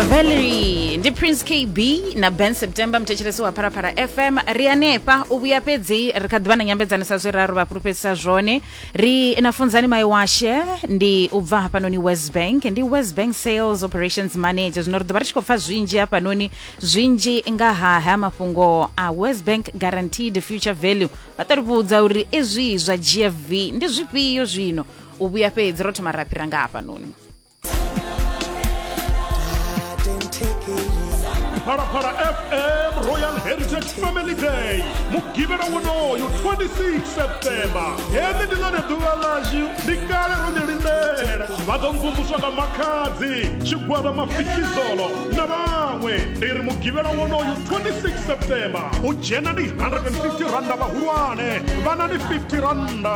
valerie ndi prince kb na ben september muthetshelesi wa pharafara fm ri anefha u vhuya fhedzi ri kha ḓivha na nyambedzano sa zwe raru vha fhulufhedzisa zwone ri na funzani mai washe ndi u bva hafhanoni west bank ndi west bank sales operations manager zwino ri ḓo vha ri tshi khou pfa zwinzhi hafhanoni zwinzhi nga ha ha mafhungo a west bank guaranteed future value vha ṱo ri vhudza uri izwi zwa gfv ndi zwifhio zwino u vhuya fhedzi ro thoma ra fhira nga hafhanoni phalaphala fm royal heritage family day mugivhela wonoyo 26 septemba heḽi ndi ḽone ḓuvha ḽashu ndi kale ro ḽi lindela vha ḓo mvumvuswa nga makhadzi tshigwada mafikizolo na vhaṅwe ndi ri mugivhela wonoyo 26 septemba u dzhena ndi 150 randa vhahulwane vhanani 50 randa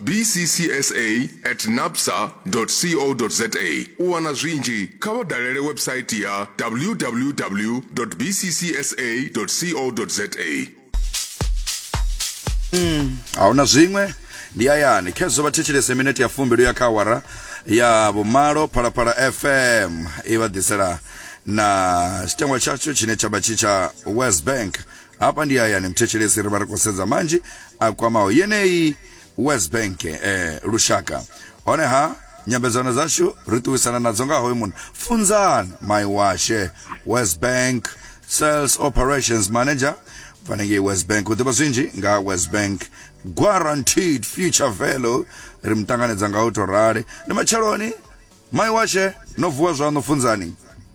bccsa at napsa co za u wana zwinzhi kha vha dalele website ya www bccsa co za a huna zwiṅwe ndi hayani khezwo vha thetshelese minete ya fumbi ya kha awara ya vhumalo phalaphala fm i vha ḓisela na tshitangwa tshatsho tshine tsha vha tshi tsha west bank Hafha ndi hayani mthetshelesi ri vha ri khou sedza manzhi a kwamaho yeneyi West Bank eh, lushaka honeha nyambedzano dzashu ri ṱuwisana nadzo nga hoyu munna funzan mai washe West Bank Sales Operations Manager fanengei West Bank u ḓivha zwinzhi nga West Bank guaranteed future value ri mu ṱanganedza nga u tou rali ndi matsheloni mai washe no vuwa zwaṋu funzani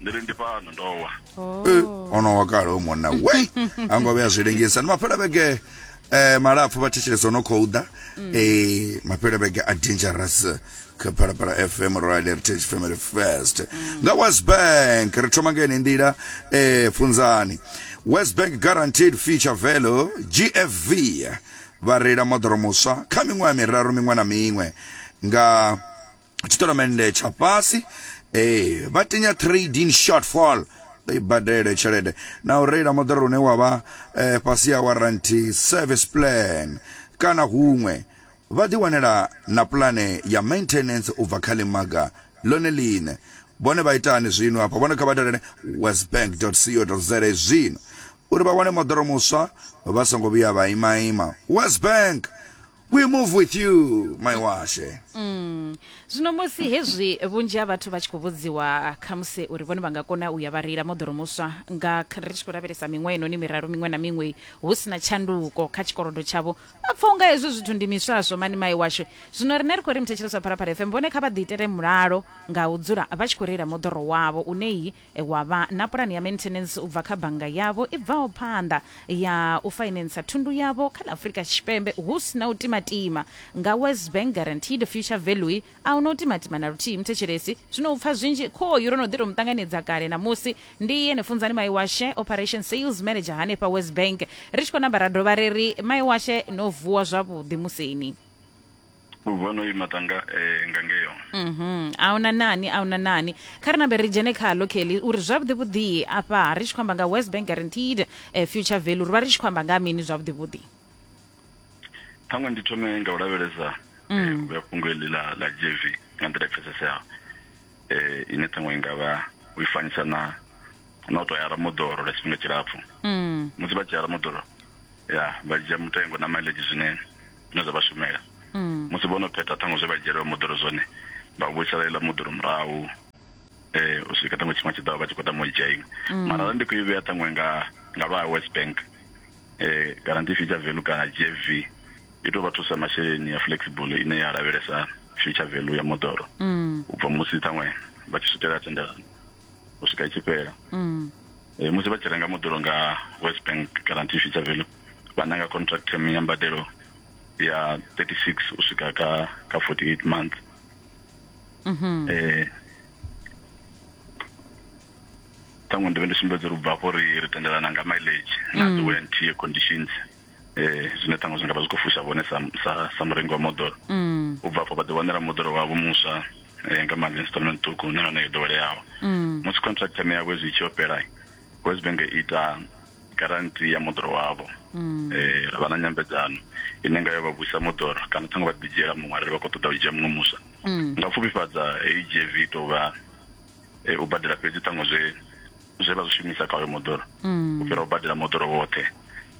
ndiri ndi fhano ndo wa oh. ono wa kale umona we ango vhe zwi lengisa ni mafhela vhege eh malapfu vha thetshelesa no khou ḓa mm. eh mafhela vhege a dangerous kha phalaphala fm royal heritage family first mm. nga west bank ri thoma ngene ndila eh funzani west bank guaranteed future value gfv vha reila moḓoro muswa kha miṅwaha miraru miṅwe na miṅwe nga tshitonomennde tsha fhasi ee vha tinya trade in shortfall i badele tshelede na u reila moḓoro une wa vha eh, fhasi ya warranty service plan kana huṅwe vha ḓiwanela na pulane ya maintenance u bva kha ḽimaga ḽone ḽine vhone vha itani zwino hafha vhone kha vha dalele westbank co za zwino uri vha wane moḓoro muswa vha songo vhuya vha imaima westbank we move with you mai washe Mm. zwino musi hezwi vhunzhi ha vhathu vha tshi khou vhudziwa khamusi uri vhone vha nga kona u ya vha reila moḓoro muswa nga kha- ri tshi khou lavhelesa miṅwe inoni miraru miṅwe na miṅwe hu si na tshanduko kha tshikolodo tshavho vha pfa unga hezwi zwithu ndi miswaswo mani mai washu zwino rine ri khou ri muthetshelesi wa phalaphala fm vhone kha vha ḓiitele mulalo nga u dzula vha tshi khou reila moḓoro wavho une iyi wa vha na pulane ya maintenance u bva kha bannga yavho i bvaho phanḓa ya u fainentsa thundu yavho kha ḽa Afrika Tshipembe hu si na u timatima. Nga Wes Bank Guaranteed Future Value, a hu na u timatima na luthihi muthetshelesi. Zwino u pfa zwinzhi, khoyu ro no ḓi tou mu ṱanganedza kale ṋamusi. Ndi ene Funzani Maiwashe, Operation Sales Manager hanefha Wes Bank. Ri tshi khou namba ra dovha ra ri, Maiwashe, no vuwa zwavhuḓi museni. u bva no ima tanga eh, nga ngeyo mhm a huna nani a huna nani kha ri nambe ri dzhene khalo kelly uri zwavhuḓi vhuḓi afha ri tshi khou amba nga west bank guaranteed eh, future value ri vha ri tshi khou amba nga mini zwavhuḓi vhuḓi ṱhaṅwe ndi thome nga u lavhelesa eh, u vhea fhungo eḽi ḽa ḽa jv nga nḓila i pfeseseaho eh, ine ṱhaṅwe i nga vha u i fanisa na na u tou ya ramoḓoro lwa tshifhinga tshilapfhu mm. musi vha dzhia ramoḓoro ya vha dzhia mutengo na mileage zwine zwine zwa vha shumela mm. musi vho no phetha ṱhaṅwe zwe vha dzhielwa moḓoro zwone vha vhuisela iḽa moḓoro murahu um u swika ṱhaṅwe tshifhinga tshi ḓaho vha tshi khou tama u dzhia iṅwe mm. mara ra ndi khou i vhea ṱhaṅwe nga nga lwa west bank um kana ndi feature value kana g f v i tou vha thusa masheleni ya flexible ine ya lavhelesa feature value ya moḓoro mm. u bva musi ṱhaṅwe vha tshi swikela tendelano u swika i tshi fhela mm. e, musi vha tshi renga moḓoro nga west bank guarantee future value vha nanga contract term ya mbadelo ya 36 u swika ka ka 48 months mm -hmm. e, ṱhaṅwe ndi vhe ndi sumbedza uri u bva afho ri ri tendelana nga mileage na mm. the warranty conditions eh zwine ṱhaṅwe zwi nga vha zwi khou fusha vhone sa sa sa murengi wa moḓoro mm. u bva afho vha ḓi wanela moḓoro wavho muswa eh, nga mali installment ṱhukhu na yone yo ḓoweleaho mm. musi contract yane yavho zwi tshi yo fhela west bank i ita garanti ya moḓoro wavho mm. eh ra vha na nyambedzano ine nga yo vha vhuisa moḓoro kana ṱhaṅwe vha ḓi dzhiela muṅwe arali vha khou ṱoḓa u dzhia muṅwe muswa nga pfufhifhadza heyi gv tou vha eh, u badela fhedzi ṱhaṅwe zwe zwe vha zwi shumisa kha hoyo moḓoro mm. u fhira u badela moḓoro woṱhe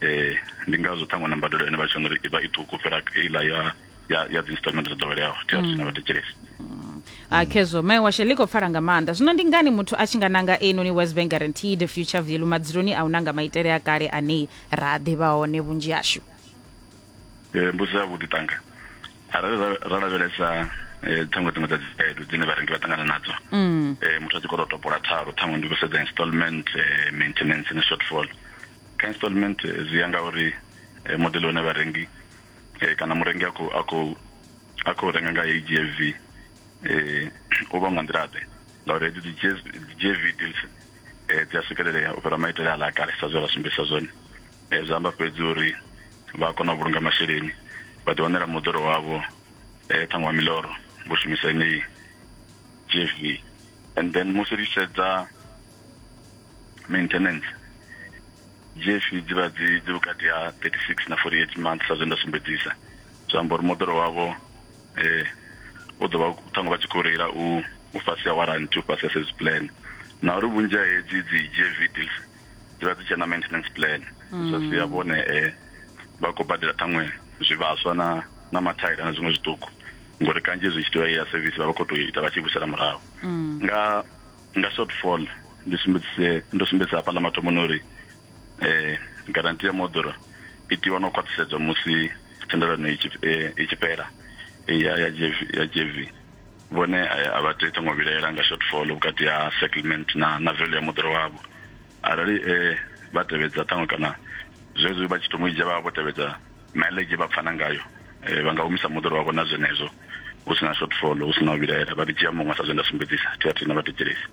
eh ndi ngazwo ṱhaṅwe na mbadelo ine vha tshi uri ivha i ṱhukhu fhira iḽa ya ya ya dzi installment dzo ḓoweleaho thi a thina mm. vhathetshelesi mm. a ah, khezwo mai washe ḽi khou pfala nga maanḓa zwino ndi ngani muthu a tshi nga nanga einoni west bank guaranteed future value madzuloni a u nanga maitele a kale ane ra ḓivha hone vhunzhi hashu um mbudziso ya vhuḓi tanga arali ra lavhelesa eh, ṱhaṅwe dziṅwe dza dzi khaedu dzine vharengi vha ṱangana nadzo um muthu a tshi khou tou topola thalo ṱhaṅwe ndi khou sedza installment eh, maintenance na shortfall kha installment eh, zwi ya nga uri eh, modele une vharengi eh, kana murengi a khou a khou a khou renga nga heyi gv eh, u vha nga nḓila ḓe ngauri hedzi dzi GSV dzi gv deals eh, dzi a swikelelea u fhira maitele a ḽa kale sa zwe ra sumbedzisa zwone zwi amba fhedzi uri vha kona u vhulunga masheleni vha ḓi wanela moḓoro wavho eh, ṱhaṅwe wa miloro vho shumisa yeneyi gv and then musi ri sedza maintenance gv dzi vha dzi dzi vhukati ha 36 na 48 months sa zwe nda sumbedzisa zwi amba uri moḓoro wavho eh u ḓo vha ṱhaṅwe vha tshi khou reila u u fhasi ha warranty u fhasi ha service plan na uri vhunzhi ha hedzi dzi gv deals dzivha dzi tshena maintenance plan zwa mm. sia vhone eh, vha khou badela ṱhaṅwe zwivhaswa na na mathaila na zwiṅwe zwiṱuku ngori kanzhi zwi tshi tea ya service vha vha khou tou ita vha tshi vhusela murahu mm. nga nga shortfall ndi sumbedzise ndo sumbedzisa hafha ḽa mathomoni uri eh garanti ya moḓoro i tiwa no khwaṱhisedzwa musi thendelano i tshi eh, fhela eh, ya ya GV ya GV Vhone a vha tei ṱhango vhilaela nga shortfall vhukati ha settlement na na value ya moḓoro wavho arali vha tevhedza ṱhango kana zwezwi vha tshi thoma u dzhia vha vha vho tevhedza mileage vha pfana ngayo vha nga humisa moḓoro wavho na zwenezwo hu sina shortfall hu sina u vhilaela vha ḓi dzhia muṅwe sa zwe nda sumbedzisa thi a thina vha thetshelesi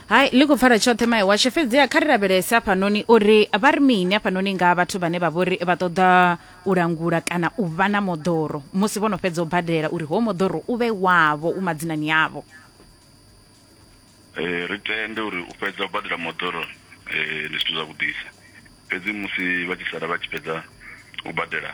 hai ḽi khou pfala tshoṱhe mai washe fhedziha kha ri lavhelese afhanoni uri vha ri mini afhanoni nga vhathu vhane vha vhori vha ṱoḓa u langula kana u vha na moḓoro musi vho no fhedza u badela uri ho moḓoro u vhe wavho u madzinani avho eh, ri tende uri u fhedza u badela moḓoro eh, ndi zwithu zwavhuḓisa fhedzi musi vha tshi sala vha tshi fhedza u badela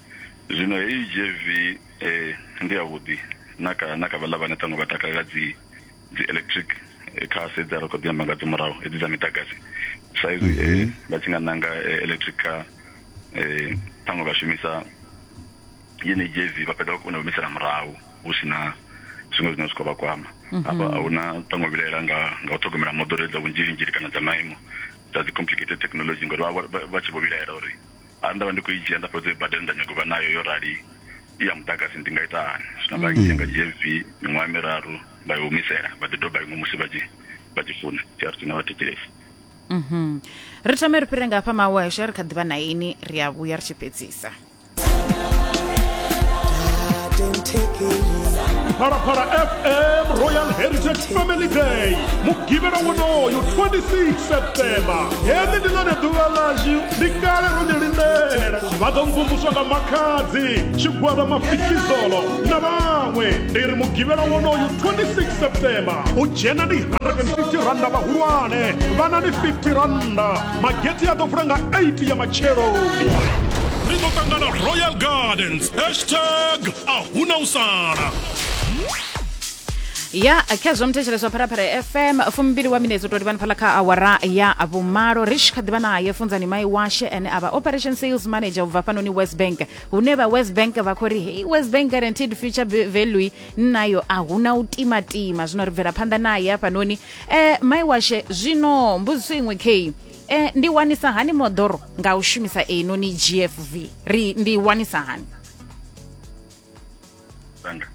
zwino heyi gv eh, ndi yavhuḓi na kha na kha vhaḽa vhane ṱhaṅwe vha takalela dzi dzi electric eh, cars hedzi a ri kho ḓi amba nga dzo murahu hedzi dza miḓagasi sa izwi eh, vha tshi nga nanga eh, electric car eh, ṱhaṅwe vha shumisa yeneyi gv vha fhedza vha kona u humisela murahu hu si na zwiṅwe zwine zwi khou vha kwama hafha a hu na ṱhaṅwe vhilaela nga nga u ṱhogomela moḓoro dza vhunzhilinzhili kana dza maimo dza dzi complicated technology ngori vha vha- vha- vha tshi vho vhilaela uri Arali nda vha ndi khou i dzhia nda fhedza u i badela nda nyaga u vha nayo yo rali i ya muḓagasi ndi nga ita hani zwino vha ndzhia nga dzhia mvi miṅwaha miraru vha i humisela vha ḓi doba iṅwe musi vha tshi vha tshi funa trc na vha thetshelesi ri thome ri fhire nga hafha mawesha ri kha ḓivha na ini ri a vhuya ri tshi fhedzisa phalaphala fm royal heritage family day mugivhela wonoyo 26 septemba heḽi ndi ḽone ḓuvha ḽashu ndi kale ro ni lindela vha ḓo mvumvuswa nga makhadzi tshigwada mafikizolo na vhaṅwe ndi ri mugivhela wonoyu 26 septemba u dzhena ndi 150 randa vhahulwane vhana ni 50 randa mageti a ḓo vula nga 8 ya matsheloni ri ḓo ṱangana royal gardens hashtag a huna u sala ya kha zwa muthetshelesi wa pharapara ya fm fumimbili wa minetsi u tou livhani phala kha awara ya vhumalo ri tshi kha ḓivha naye funzani mai washe ane a vha operation sales manager ubva fhanoni west bank hune vha west bank vha khou ri hei west bank guaranteed future v- value nnayo a huna u timatima zwino ri bvela phanḓa naye hafhanoni um mai washe zwino mbudziso iṅwe kei um ndi wanisa hani moḓoro nga u shumisa einoni gfv ri ndi wanisa hani Tanga.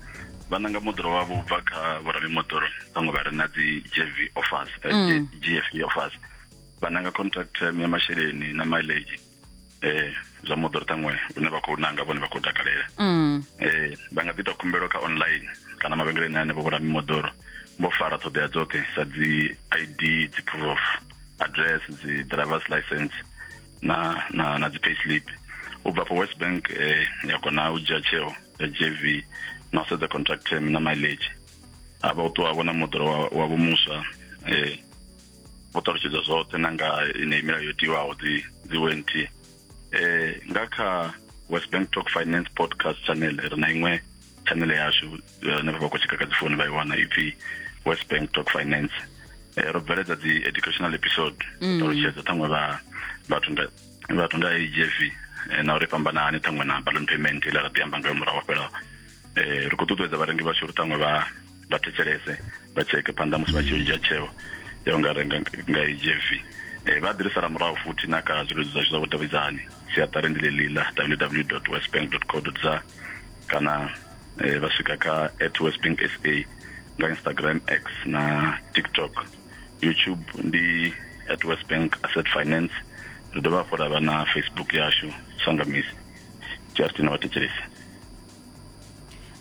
vha nanga moḓoro wavho u bva kha vhoramimoḓoro vhaṅwe vha re na dzi gv offers eh, Mm. gf offers vha nanga contract term ya masheleni na mileage eh zwa moḓoro ṱhaṅwe une vha khou nanga vhone vha khou takalela Mm. eh vha nga ḓi ita khumbelo kha online kana mavhengeleni ane vho vhulami moḓoro vho fara ṱhoḓea dzoṱhe sa dzi id dzi proof of address dzi driver's license na na na dzi payslip u bva for west bank eh, ya kona u dzhia tsheo ya jv na u sedza contract term na mileage a vha u ṱuwa vhona moḓoro wa- wavho muswa eh, vho ṱalutshedza zwoṱhe na nga ine milayo yo tiwaho dzi dzi went eh, nga kha west bank talk finance podcast channel ri na iṅwe channel yashu eh, henefho vha khou tsheka kha dzi founu vha i wana ipfi west bank talk finance Eh, ro bveledza dzi educational episode mm. ṱalutshedza ṱhaṅwe vha vhathu nga vhathu nga agf eh, na uri fhambana hani ṱhaṅwe na balloon payment ile ra ḓi amba ngayo murahu fhela um eh, ri khou ṱuṱuwedza vharengi vhashu uri ṱhaṅwe vha vha thetshelese vha tsheke phanḓa musi vha tshi dzhia tsheo ya u nga renga nga agf um vha ḓirisela murahu futhi na kha zwileludzi zwashu zwa vhudavhidzani siaṱari ndi ḽeḽi ḽa www westbank co za kana eh, vha swika kha at westbank sa nga instagram x na tiktok youtube ndi at westbank asset finance ri dovha hafhu ra vha na facebook yashu sangamisi justin na vhathetshelesi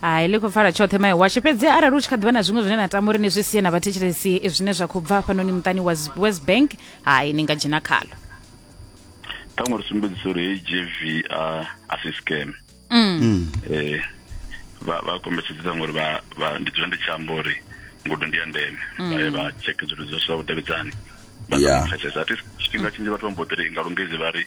hai ḽi khou pfala tshoṱhe mai washe fhedzi arali u tshi kha ḓivha na zwiṅwe zwine na tama uri ni zwi sie na vhathetshelesi zwine zwa khou bva hafhanoni muṱani wa west bank hai ni nga dzhena khalo ṱhaṅwe ri sumbedzisa uri hei gv a si scam Mm. eh vha vha kombetshedza ngori vha vha ndi dzula ndi tshi amba uri ngudo ndi ya ndeme vha ye vha check zwithu zwo sa vhudavhidzani vha sa Yeah. pfesesa ati tshifhinga tshinzhi vhathu vha mbo ḓi ri nga lungezi vha ri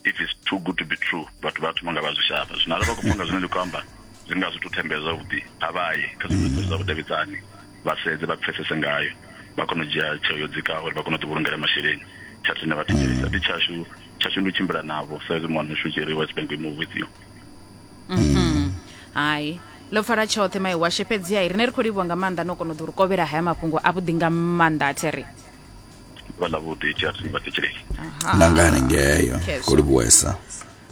if it's too good to be true vhathu vha thoma nga vha zwi shavha zwino arali vha khou pfa nga zwine ndi khou amba zwi nga zwi thu thembela zwavhuḓi a vha ye kha zwithu zwa vhudavhidzani vha sedze vha pfesese ngayo vha kone u dzhia tsheo yo dzikaho uri vha kone u ḓivhulungela masheleni tsha thina vha thetshelesa ndi tshashu tshashu ndi u tshimbila navho sa izwi muwana washu tshiri wa tshipembe i muvhudziwa mhm. hai ḽo pfala tshoṱhe mai washe fhedzi hai rine ri khou livhuwa nga maanḓa no kona u ḓi ri kovhela haya mafhungo a vhuḓi nga maanḓa a theri vha ḽa vhuḓi tshiarini vha thetshelei nangani ngeyo khou livhuwesa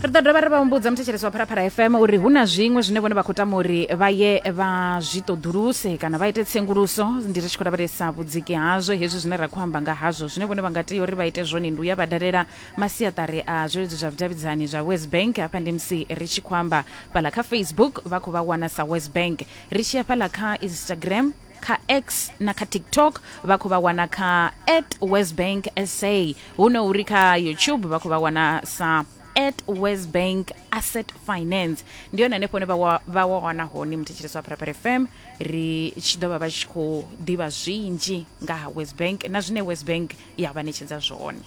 ri ḓo dovha ri vha humbudza muthetshelesi wa pharapara fm uri hu na zwiṅwe zwine vhone vha khou tama uri vha ye vha zwi ṱoḓuluse kana vha ite tsenguluso ndi ri tshi khou lavhelesa vhudziki hazwo hezwi zwine ra khou amba nga hazwo Zwine vhone vha nga tea uri vha ite zwone ndi u ya vha dalela masiaṱari a zwileludzi zwa vhudavhidzani zwa WesBank. Hafha ndi musi ri tshi khou amba fhaḽa kha Facebook vha khou vha wana sa WesBank, ri tshi ya fhaḽa kha Instagram, kha X na kha TikTok vha khou vha wana kha at WesBank sa, hu no uri kha YouTube vha khou vha wana sa. at west bank asset finance ndi yone hanefho ne vha wa- vha wa wana hone muthetshelesi wa pharapara fm ri tshi ḓo vha vha tshi khou ḓivha zwinzhi nga ha west bank na zwine west bank ya vha ṋetshedza zwone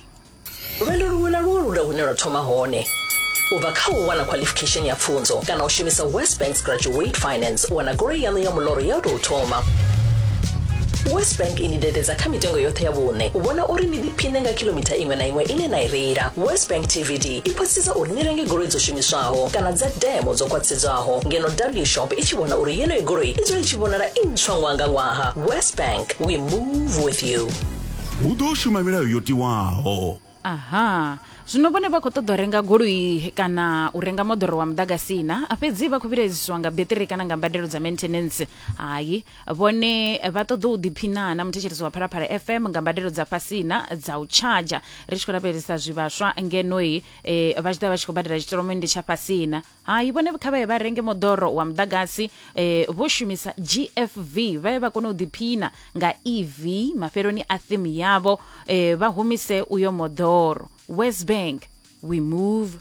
lwendo luṅwe na luṅwe lu na hune lwa thoma hone u bva kha u wana qualification ya pfunzo kana u shumisa west banks graduate finance u wana goloi yaṋu ya muloro ya u tou thoma west bank i ni dededza kha mitengo yoṱhe ya vhuṋe u vhona uri ni ḓi khwine nga kilomitha iṅwe na iṅwe ine na i reila westbank tvd i khwaṱhisedza uri ni renge goloi dzo shumiswaho kana dza demo dzo khwaṱhisedzwaho ngeno w shop i tshi vhona uri yeneyo goloi i dzule i tshi vhonala i ntswa ṅwaha nga ṅwaha westbank we move with you hu ḓo shuma milayo yo tiwaho aha zwino vhone vha khou ṱoḓa u renga goloi kana u renga moḓoro wa muḓagasi na fhedzi vha khou vhilaedziswa nga beṱiri kana nga mbadelo dza maintenance hai vhone vha ṱoḓa u ḓiphina na muthetshelesi wa phalaphala fm nga mbadelo dza fhasina dza u tshadzha ri tshi khou lavhelesa zwivhaswa ngenoi e, vha tshi ḓa vha tshi khou badela tshitolomende tsha fhasina hai vhone kha vha ye vha renge moḓoro wa muḓagasi e, vho shumisa gfv vha ye vha kone u ḓiphina nga ev mafheloni a thimu yavho e, vha humise uyo moḓoro west bank we move